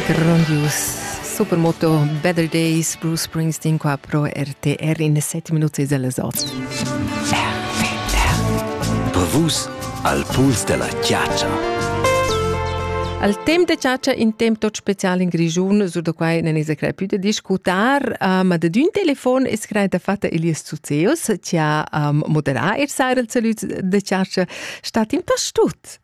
Grondius Supermoto Better Days Bruce Springsteen qua pro RTR in 7 minuti della sot. Bevus al puls della chiaccia. Al temp de ciaccia in temp tot special in Grigiun, sur da quai non es crai più da discutar, uh, ma da d'un telefon es crai da fatta Elias Zuzeus, ci ha um, moderà er sair al salut de ciaccia. Stat in tas tut?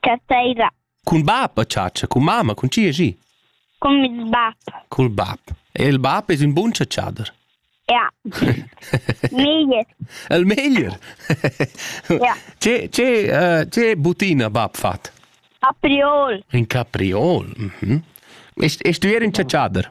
Cateira. Cun bab a chatscha, cun mamma, cun chi è gi? Con mes bab. Cul bab. E il bab es ün bun chatschader. Ja. Meglier. El meglier. Ja. Che, che, uh, che butina bab fat? Capriol. In capriol. Mhm. E, e stuier in chatschader?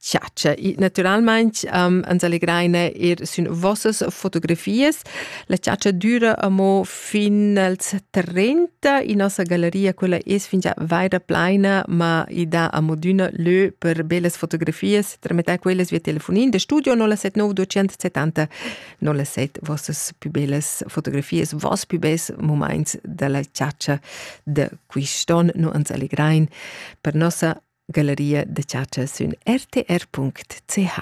chatscha. E naturalmain um, ehm, ans allegraina er sün vossas fotografias. La chatscha düra amo fin als 30. In nossa galleria, quella es fingià vaira plaina, ma i dà amo d'üna lö per bellas fotografias. Tramettà quellas via telefonin de studio 079 270 07 vossas più bellas fotografias, vos più bels moments della chatscha de quist'on. Nu ans allegrain per nossa Galleria da chatscha sün rtr.ch.